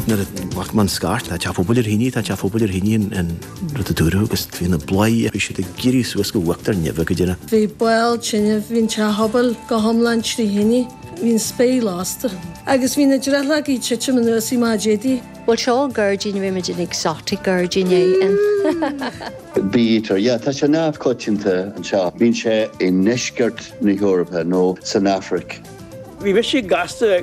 Nuair a bhfuair mé an scairt, tá teach pobail ar thine, tá teach pobail ar thine an rud a dúradh agus bhí na bladhairí, bhí siad ag éirí suas go huachtar neimhe go dtí na. Bhí ball tine, bhí an teach pobail go hiomlán trí thine, bhí an spéir lasta agus bhí na drithleogaí ag titim anuas i má d'fhéadfaí. Bhuel, seo gairdín, rimid in exotic gairdín é in. Bítear, yeah, tá sé neamhchoitianta anseo. Bíonn sé i ndeisceart na hEorpa nó san Afraic. Bhí mise gasta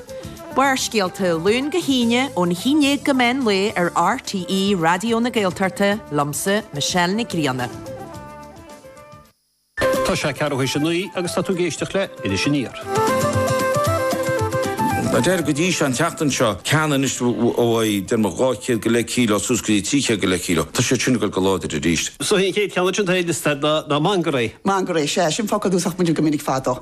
Barrscéalta, Luan go hAoine, óna haon déag go meán lae ar RTÉ Raidió na Gaeltachta, liomsa, Michelle Nic Grianna. Tá sé ceathrú théis a naoi agus tá tú ag éisteacht le Iris Aniar. An deireadh go dtí seo an tseachtain seo. Ceann anois uaidh, déarfadh 200 go leith cíleo, suas go dtí 300 go leith cíleo. Tá siad sin ag dul go láidir arís. Is é an chéad cheann ansin atá ar liosta ná mangairéi. Mangairéi, sea, sin focal a úsáidfimid go minic fadó.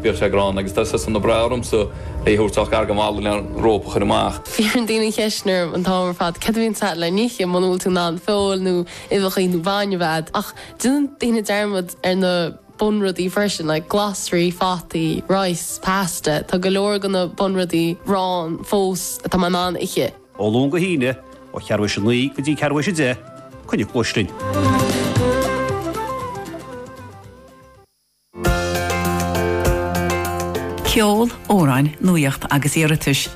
Bhíodh sé gránna agus tá sé sona breá ormsa é a thabhairt ach gar go mall le an rópa a chur amach. Iarrann daoine an cheist sin orm an t-am ar fad céard a bhíonns agat le n-ithe muna bhfuil tú in ann feoil nó uibheacha nó bainne a bheith agat ach déanann daoine dearmad ar na bunrudaí freisin like glasraí, fataí, rice, pasta, tá go leor de na bunrudaí ann fós atá mé in ann a ithe. Ó Luan go hAoine, ó cheathrú théis a naoi go dtí ceathrú théis a deich, coinnigh cluais linn. Ceol, amhráin, nuaíocht agus iarratais.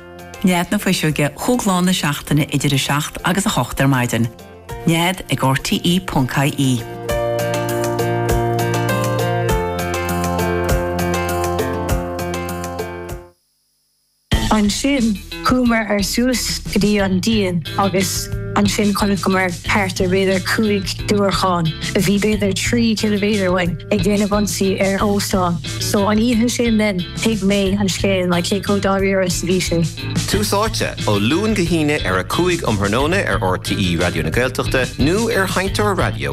Nead na Fuiseoige chúig lá na seachtaine idir 7 agus 8 ar maidin. Nead ag RTE.ie. Ansin chuamar suas go dtí an díon agus ansin chonaiceamar thart ar b'fhéidir cúig diúracán a bhí b'fhéidir trí chiliméadar uainn ag déanamh ionsaí ar an óstán. So an oíche sin then thuig mé an scéal like cé chomh dáiríre is a bhí sé. Tús Áite, ó Luan go hAoine ar a 5 um thráthnóna ar RTÉ Raidió na Gaeltachta nó ar sheinnteoir raidió